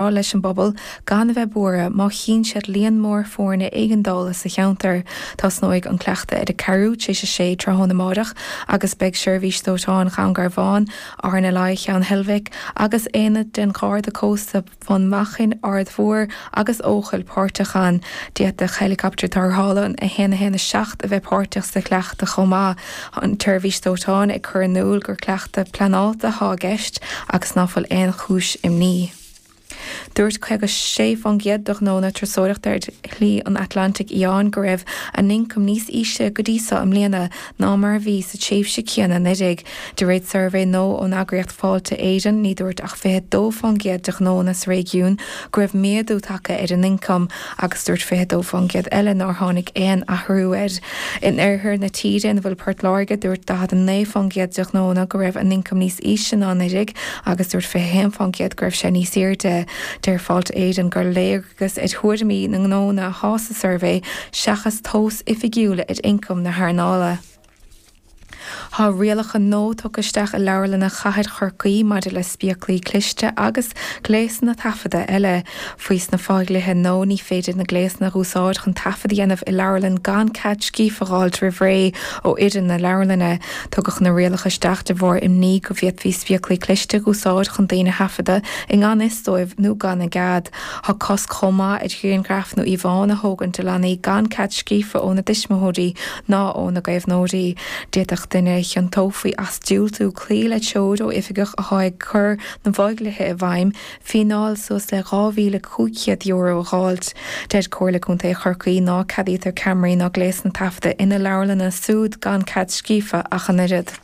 rá leis an bpobal gan a bheith buartha má chíonn siad líon mór foirne éigeandála sa cheantar. Tosnóidh an cleachtadh ar a ceathrú tar éis a sé tráthnóna amárach agus beidh Seirbhís Dóiteáin Dhún Garbhán, RNLI Cheann Heilbhic agus aonad den Gharda Cósta Bhun Machan, Aird Mhór agus Eochaill páirteach ann. D'fhéadfadh Héileacaptar Tarrthála 117 a bheith páirteach sa chleachtadh chomh maith. Tá an tSeirbhís Dóiteáin ag cur in iúl gur cleachtadh pleanáilte atá i gceist agus ná fuil aon chúis imní. Dúirt 56% de ghnónna turasóireachta ar Shlí an Atlantaigh Fhiáin go raibh a n-ioncam níos ísle go dtí seo i mbliana ná mar a bhí sa tréimhse céanna anuraidh, de réir suirbhé nua ón eagraíocht Fáilte Éireann. Ní dúirt ach 22% de ghnónna sa réigiún go raibh méadú tagtha ar an ioncam agus dúirt 22% eile nár tháinig aon athrú air. In oirthear na tíre, ina bhfuil Port Láirge, dúirt 49% de ghnónna go raibh a n-ioncam níos ísle ná anuraidh agus dúirt 21% go raibh sé níos airde. Deir Fáilte Éireann gur léargas ar thuairimí na ngnónna atá sa suirbhé seachas tomhas oifigiúil ar ioncam na hearnála. Tá rialacha nua tugtha isteach i Leabharlanna Chathair Chorcaí maidir le spéaclaí cliste agus gléasanna taifeadta eile. Faoi sna fo-dhlithe nua, ní féidir na gléasanna a úsáid chun taifead a dhéanamh i Leabharlann gan cead scríofa a dh'fháilt roimh ré ó fhoireann na Leabharlainne. Tugadh na rialacha isteach de bharr imní go bhféadfaí spéaclaí cliste a úsáid chun daoine a thaifeadadh i ngan fhios dóibh nó gan a gcead. Tá cosc chomh maith ar ghrianghraif nó íomhánna a thógaint de leanaí gan cead scríofa óna dtuismitheoirí, nó óna gcaomhnóirí. D'fhéadfadh duine a chiontófaí as diúltú cloí le treoir ó oifigeach atá ag cur na bhfo-dhlithe i bhfeidhm, fíneáil suas le €2,500 a dh'fháilt. Deir Comhairle Contae Chorcaí ná ceadaítear ceamaraí ná gléasanna taifeadta ina leabharlanna súd gan cead scríofa ach an oiread.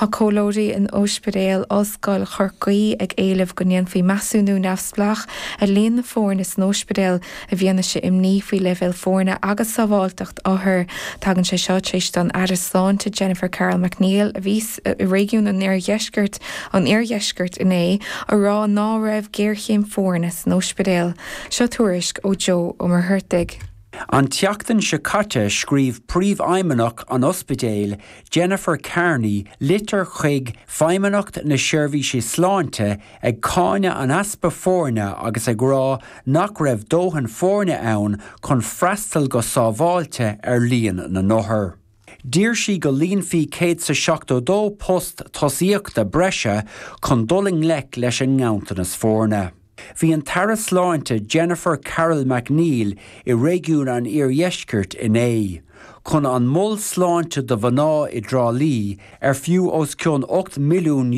Tá comhairleoirí in Óispidéal Ollscoil Chorcaí ag éileamh go ndéanfaí measúnú neamhspleách ar líon na foirne san óispidéal i bhfianaise imní faoi leibhéal foirne agus sábháilteacht othar. Tagann sé seo tar éis don Aire Sláinte Jennifer Carroll MacNeill, a bhí i réigiún an Oirdheiscirt, an Iardheiscirt, inné a rá ná raibh géarchéim foirne san óispidéal. Seo tuairisc ó Joe Ó Muircheartaigh. An tseachtain seo caite scríobh Príomhfheidhmeannach an Ospidéil, Jennifer Kearney litir chuig Feidhmeannacht na Seirbhíse Sláinte ag cáineadh an easpa foirne agus ag rá nach raibh dóthain foirne ann chun freastal go sábháilte ar líon na n-othar. D'iarr sí go líonfaí céad is a seachtó dó post tosaíochta breise chun dul i ngleic leis an nganntanas foirne. Bhí an tAire Sláinte Jennifer Carroll MacNeill i réigiún an Iardheiscirt inné chun an Mol Sláinte do Mhná i dTrá Lí ar fiú os cionn €8 milliún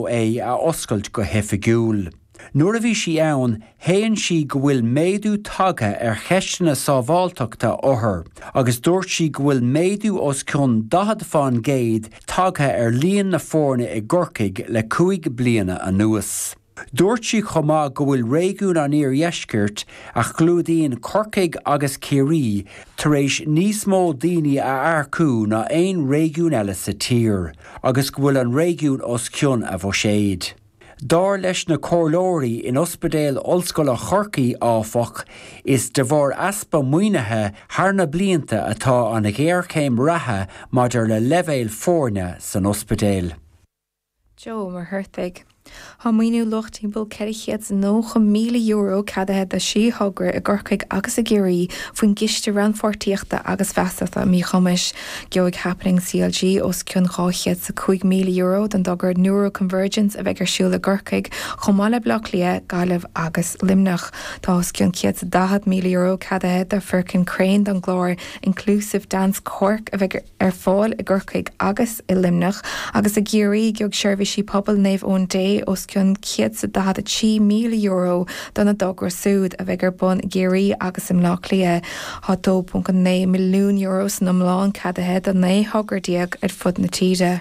é a oscailt go hoifigiúil. Nuair a bhí sí ann, shéan sí go bhfuil méadú tagtha ar cheisteanna sábháilteachta othar agus dúirt sí go bhfuil méadú os cionn 40 fán gcéad tagtha ar líon na foirne i gCorcaigh le cúig bliana anuas. Dúirt sí chomh maith go bhfuil réigiún an Iardheiscirt, a chlúdaíonn Corcaigh agus Ciarraí, tar éis níos mó daoine a earcú ná aon réigiún eile sa tír agus go bhfuil an réigiún os cionn a bhuiséid. Dar leis na comhairleoirí in Ospidéal Ollscoile Chorcaí, áfach, is de bharr easpa maoinithe thar na blianta atá an ghéarchéim reatha maidir le leibhéal foirne san ospidéal. Joe Muircheartaigh, Tá maoiniú luach timpeall €490,000 ceadaithe do thrí thogra i gCorcaigh agus i gCiarraí faoin gCiste Rannpháirtíochta agus Feasachta um Míchumais. Gheobhaidh Happening CLG os cionn €205,000 don dtogra Neuro Convergence a bheidh ar siúl i gCorcaigh, chomh maith le Baile Átha Cliath, Gaillimh agus Luimneach. Tá os cionn €140,000 ceadaithe do Firkin Crane don gclár Inclusive Dance Cork a bheidh ar fáil i gCorcaigh agus i Luimneach agus i gCiarraí. Gheobhaidh Seirbhísí Pobail Naomh Eoin Dé os cionn €143,000 dona dtogra súd a bheidh ar bun i gCiarraí agus i mBaile Átha Cliath. Tá €2.9 milliún san iomlán ceadaithe do 19 thogra ar fud na tíre.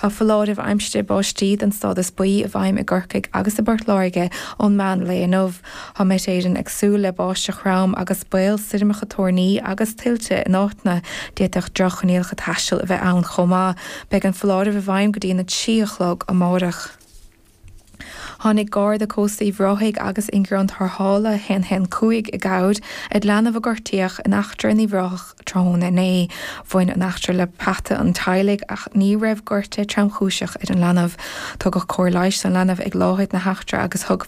Tá foláireamh aimsire báistí den stádas buí i bhfeidhm i gCorcaigh agus i bPort Láirge ón meán lae inniu. Tá Met Éireann ag súil le báisteach throm agus baol stoirmeacha toirní agus tuilte in áiteanna. D'fhéadfadh droch-choinníollacha taistil a bheith ann chomh maith. Beidh an foláireamh i bhfeidhm go dtí an 3 a chlog amárach. Tháinig Garda Cósta Uíbh Ráthaigh agus ingearán tarrthála 115 i gcabhair ar leanbh a gortaíodh in eachtra in Uíbh Ráthach tráthnóna inné. Bhain an eachtra le peata an teaghlaigh ach ní raibh gortú tromchúiseach ar an leanbh. Tugadh cóir leighis don leanbh ag láthair na heachtra agus thug